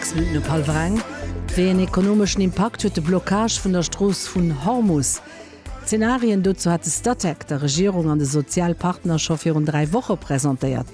Sechs Minutten op hallwer eng. Wéi een ekonomeschen Impakt huet de Blockage vun der Strooss vun Hormus? D'Zenarien dozou hat de Statec der Regierung an de Sozialpartner scho virun dräi Woche presentéiert.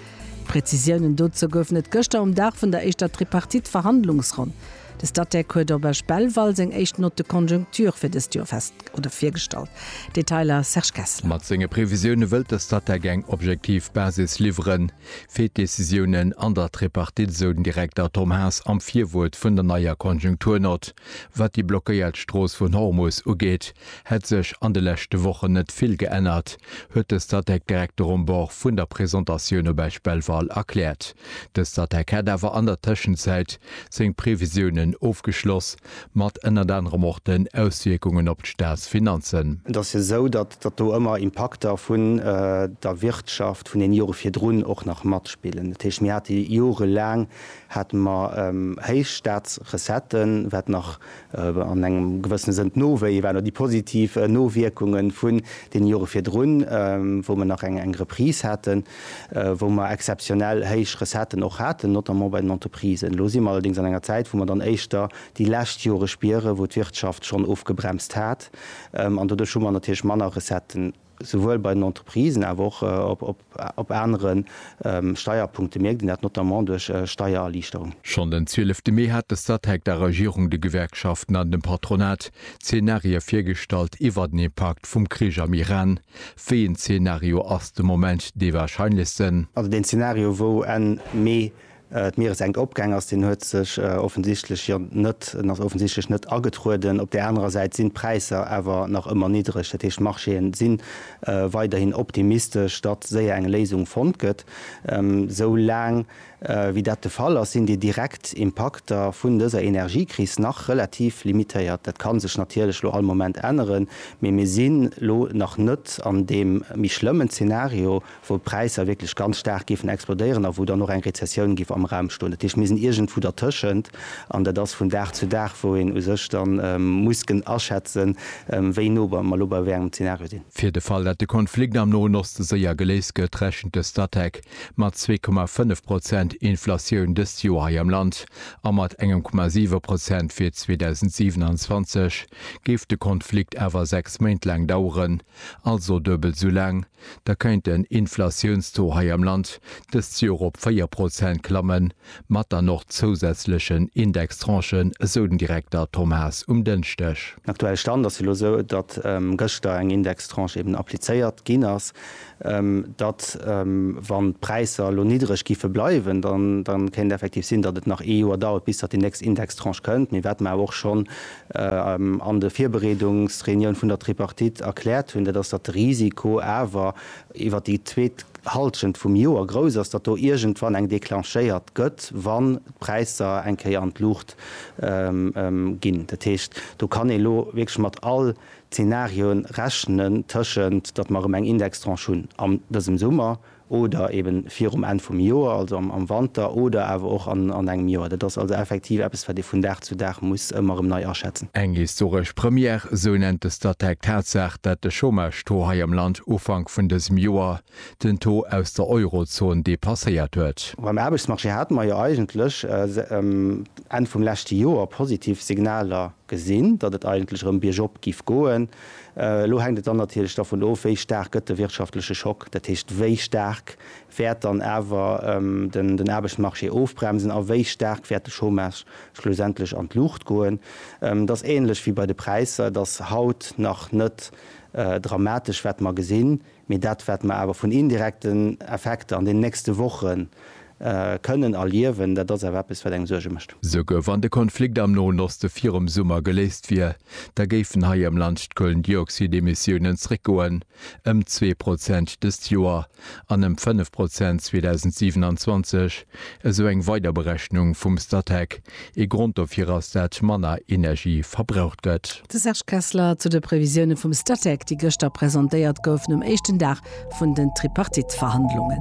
Prezisiounen dozou goufen et gëschter um Dag vun der éischter Tripartite-Verhandlungsronn. De Statec huet op Esch Belval seng éischt Note de conjoncture fir dëst Joer fest oder virgestallt. Detailer Serge Kessler. Mat senge Previsioune wëllt de Statec eng objektiv Basis liwweren. fir d'Decisiounen an der Tripartite, esou den Direkter Tom Haas am Virwuert vun der neier Konjunkturnott. Wat déi blockéiert Strooss vun Hormus ugeet, hätt sech an de leschte Wochen net vill geännert, huet de Statec-Direkter um Bord vun der Presentatioun op Esch Belval erkläert. De Statec hätt awer an der Tëschenzäit seng Previsiounen ofgeschloss, mat ënnert anerem och den Auswierkungen op d'Staatsfinanzen. Et ass jo esou, datt datt do ëmmer Impakter vun der Wirtschaft vun den Jore virdrun och nach matspillen, dat heescht mir hate jorelaang hate mer héich Staatsrecetten, wat nach an engem gewëssene Sënn d'Nowéie waren oder déi positiv Nowierkunge vun deene Jore virdrun, wou mer nach eng Reprise haten, wou mer exzeptionell héich Recetten och haten, notamment bei den Entreprisen. Elo si mer allerdéngs an enger Zäit, wou mer dann éischter déi lescht Jore spieren, wou d'Wirtschaft schonn ofgebremst hat. An doduerch hu mer natierlech manner Recetten, souwuel bei den Entreprisen, awer och op anere Steierpunkte mierkt een dat, notamment duerch Steiererliichterung. Schonn den 12 de Mee hat de Statec der Regierung, de Gewerkschaften an dem Patronat Zeenarië virgestallt iwwert den Impakt vum Krich am Iran. Wéi een Zeenario ass de Moment dee warscheinlechsten? Also deen Zeenario, wou Enn Mee D'Mieressenkopgäng ass, deen huet sech offensichtlech jo net, en ass offensichtlech net agetrueden. Op där anerer Säit sinn d'Präisser awer nach ëmmer niddreg. Dat heescht, d'Marchéë si weiderhin optimistesch, datt séier eng Léisung fonnt gëtt. Esou laang wéi dat de Fall ass, sinn déi direkt Impakter vun dëser Energiekris nach relativ limitéiert. Dat ka sech natierlech lo all Moment änneren, mee mir sinn lo nach net an deem méi schlëmmen Zenario, wou d'Präisser wierklech ganz staark géifen explodéieren a wou dann och eng Rezessioun géif am Raum stoen. Dat heescht, mir sinn iergendwou dertëschent an dat ass vun Dag zu Dag, wou een u sech da muss kënnen aschätzen, wéi no mer elo bei wéi engem Zenario sinn. Fir de Fall, datt de Konflikt am Noen Oste séier geléist gëtt, rechent de Statec mat zwee Komma fënnef Prozent Inflatioun dëst Joer hei am Land a mat engem Komma siwe Prozent fir 2027. Géif de Konflikt awer sechs Méint laang daueren, Also duebel esou laang, da kéint den Inflatiounstaux hei am Land dëst Joer op 4 Prozent klammen, mat dann och zousätzlechen Indextranchen, esou den Direkter Tom Haas um Dënschdeg. Den aktuelle Stand ass jo elo esou, datt gëschter eng Indextranche eben applizéiert ginn ass, datt, wann d'Präisser elo niddreg géife bleiwen, dann kéint et effektiv sinn, datt et nach ee Joer dauert, bis datt déi nächst Indextranche kënnt. Mee wat mer awer och schonn an de Virbereedungsreunioun vun der Tripartite erkläert hunn, dat ass, datt de Risiko awer iwwer déi zweet Halschent vum Joer grouss ass, datt do iergendwann eng declenchéiert gëtt, wann d'Präisser eng Kéier an d'Luucht ginn. Dat heescht, do kann ee elo wierklech mat all Zenarioe rechnen, tëschent datt mer erëm eng Indextranche hunn an dësem Summer, oder eben virum Enn vum Joer, also am Wanter, oder awer och an engem Joer. Dat ass also effektiv eppes, wat ee vun Dag zu Dag muss ëmmer erëm nei aschätzen. Eng historesch Première, esou nennt de Statec d'Tatsaach, dat de Chômage-Taux hei am Land Ufank vun dësem Joer den Taux aus der Eurozon depasséiert huet. Beim Aarbechtsmarché hate mer jo eigentlech Enn vum leschte Joer positiv Signaler gesinn, datt et eigentlech erëm biergop giff goen. Elo hänkt et dann natierlech dervun of, wéi staark gëtt de wirtschaftleche Schock, dat heescht, wéi staark wäert dann awer den Aarbechtsmarché ofbremsen a wéi staark wäert de Chômage schlussendlech an d'Luucht goen. Et ass änlech wéi bei de Präisser, et ass haut nach net dramatesch, wat mer gesinn. Mee dat wat mer awer vun indirekten Effekter an den nächste Woche kënnen erliewen, dat ass awer eppes wat engem Suerge mécht. Souguer wann de Konflikt am Noen Oste virum Summer geléist wier, da géifen hei am Land d'Kohlendioxid-Emissiounen zréckgoen ëm zwee Prozent dëst Joer an ëm fënnef Prozent 2027. esou eng weider Berechnung vum Statec. Ee Grond dofir ass, dat manner Energie verbraucht gëtt. De Serge Kessler zu de Previsioune vum Statec, déi gëschter presentéiert goufen um éischten Dag vun den Tripartite-Verhandlungen.